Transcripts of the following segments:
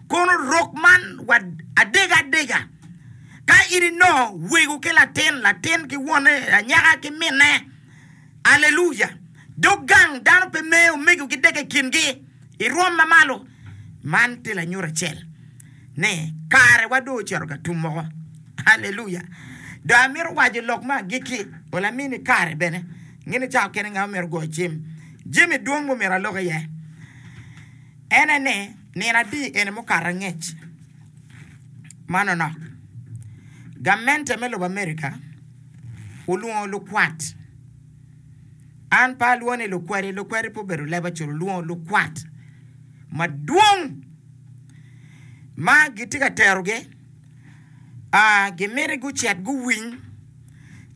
Kono rok man wa adega adega ka in inongo wego ki latin, latin ki wonne, anyaka ki minne. Aleluya! Dog gang dano pe mee omego ki dega i kingi, irwom ma malo. Man tye lanyut acel ni karewa dong ocito ka tum moko. Aleluya! Dong amito waco lok me agikki, wa lamin i kare bene, ngene cawa kene nga ma myero ogoyo cim, jami dwong ma omyero alok iye. En aye ni, nino atir eni mukato angec ma nonok, gamente me lobo Amerika olwongo lukwat, an pe alwongo ni lukwadi, lukwadi pe obedo leb acel, olwongo lukwat madwong ma gitye ka terogi, gimiti gucit guwiny,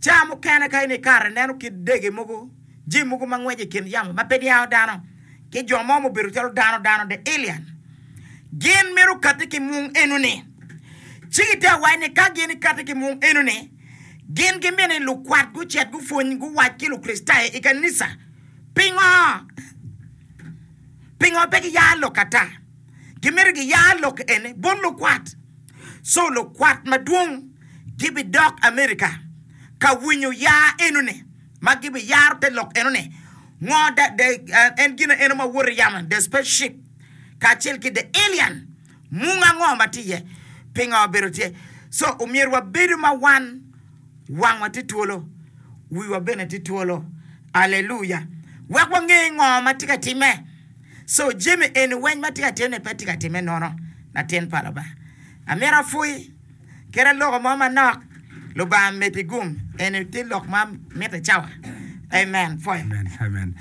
ca mukene ka in ikato ineno kit dege mogo. jami mogo ma ngwec i kin yamo ma pe niango dano, ki jo mo mubedo calo dano dano, the alien. Gin mito kati ki mung enoni. Ci gitye ka wac ni ka gin ikati ki mung enoni, gin gimito ni lukwat gucit gupwony guwac ki Lukricitayo i kanica. Pingo? Pingo pe giyar lok ata? Gimito giyar lok eni bot lukwat. So lukwat madwong gibidok America ka winyo yar enoni. ma gibiyaro te lok enoni, ngo da, the, en gina eno ma woto i yamo, the space ship, kacel ki the alien, mung ango ma tye iye, pingo obedo tye. So, omyero wabedo ma wan wangwa tye twolo, wiwa bene tye twolo. Aleluya! Wek wange ngo ma tye ka timme. So, jami eni weny ma tye ka timne pe tye ka timme nono, latin pa Lubanga. Amito apwoyi. kadi loko mo manok lubanga miti gum eni tye lok ma miti cawa amen pwoyo. Amen amen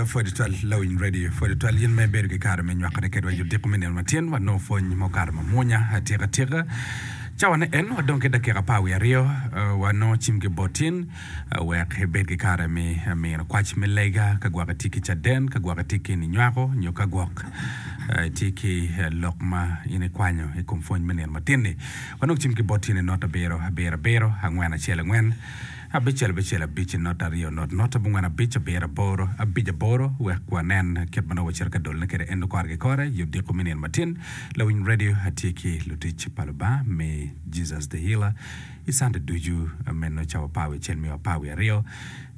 pwod tutwal lawiny radio pwod tutwal in ma ibedo ki kare me nywakone kedwa i odiko me nino ma tyen wanongo pwony mo kare mamwonya atika tika cawane en wadong ki dakika apar wiye aryo wanongo cim ki bot in wek ibed ki kare me mino kwac me lega ka gwok itye ki caden, ka gwok itye ki ninywako, nyo ka gwok itye ki lok ma in ikwanyo i kom pwony me nino matin-ni. Wanongo cim ki bot tyene not abiro abiro abiro, angwen acel angwen, abicel abicel abic, not aryo not not abongwen abic, abiro aboro abic aboro wek wanen kit ma nongo wacito ka dolone kwede en kore ki kore i odiko me nino matin. Lawiny Radio atye ki lutic pa Lubanga me Jesus the Healer. I Cante ducu meno cawa pa wi acel me wa pa wi aryo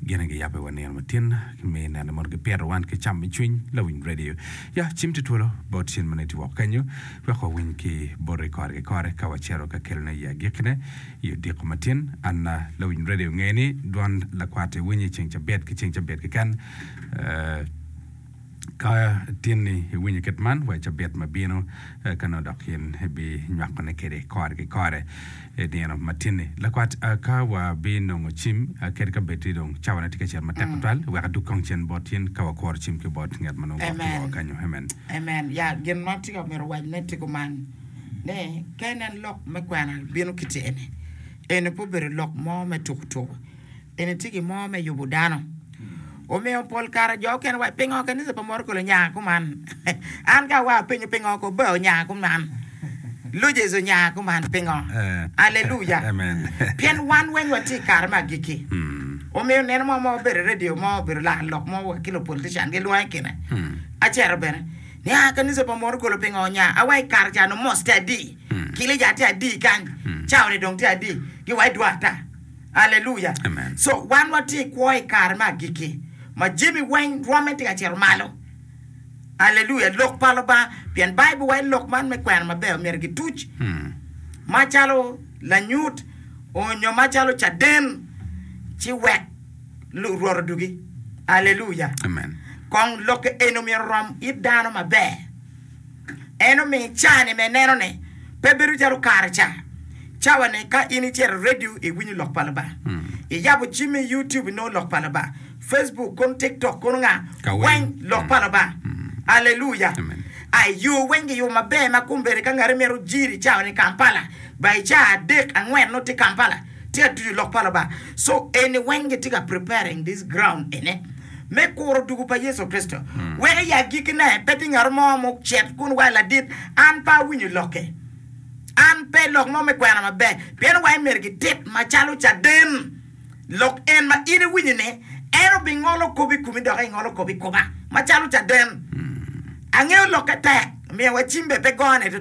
gene giyabo i wa nino ma tin ki me neno mono gipito wan ki cam me cwiny lawiny radio ya cim ti twolo bot cen mene ti woko kenyo wek wa winy ki bote kore ki kore ka wa cito ka kelo ne ya giki ne i odiko ma tin an lawiny radio nge ni dwon lakwat iwinyo i ceng cabit ki ceng cabit keken. Ka tin ni iwinyo kit man, wa i cabit ma bino ka nongo dok in ibinywakone kwede kore ki kore i nino matin-ni. Lakwat, ka wabinongo cim kadi ka bed ni dong cawane tye ka cito matek tutwal, wek adug kong cen bot in ka wakuro cim ki bot ngat ma nongo gwok ki woko kenyo. Amen. Amen. Ya, gin ma tika omyero wacne tika kuman ni ka inen lok me kwena bino kite-ni, eni pe obedo lok mo me tuku tuku. En etye ki mo me yubu dano. Omiyo pol kare jo okene waco, pingo kanisa pa morokole onyanga kuman? An ka awaa apenyo pingo kobe onyanga kuman? Luges onyanga kuman pingo? Aleluya! Pien wan weng watye i kare me agikki. Omiyo neno mo ma obedo i radio mo, obedo laka lok mo wa ki lupolitican gilwongo i kine acero bene ni aa kanisa pa morokole pingo onyanga? Awa i kare ca nongo mos tye adi, kilica tye adi kany, caone dong tye adi, giwaco dwar ata. Aleluya! So, wan watye i kwo i kare me agikki, ma jami weng rwomme tye ka cito malo. Aleluya! Lok pa Lubanga, pien Baibul waco ni lok man me kwena maber myero gituc, macalo lanyut, onyo macalo caden, ci wek Rwot odugi. Aleluya! Kong lok eni myero orom it dano maber. En omi caa-ni me nenone pe bedo calo kare ca. Cawa-ni, ka in icito i redio, iwinyo Lok pa Lubanga. Iyabo cim me YouTube, inongo Lok pa Lubanga. Facebook kono, TikTok kono, nga, weng Lok pa Lubanga. Aleluya! A I yo weng giyubo maber ma kombeddi ka ngati mito jiri cawa-ni i Kampala, ba i caa adek, angwen nongo tye Kampala. tye ka tucu lok pa Lubanga. So eni weng gitye ka preparing this ground ene me kuro dugu pa Yecu Kricito, weko i agikine pe tye ngat mo ma ocit kun waco ladit an pe awinyo lokke, an pe lok mo me kwena maber, pien waco myero gitit macalo caden lok en ma in iwinyo ni en obingolo kop i komi dok ingolo kop i koma macalo caden. Angeyo lokke tek, miyo wa cim bene pe gone tutwal.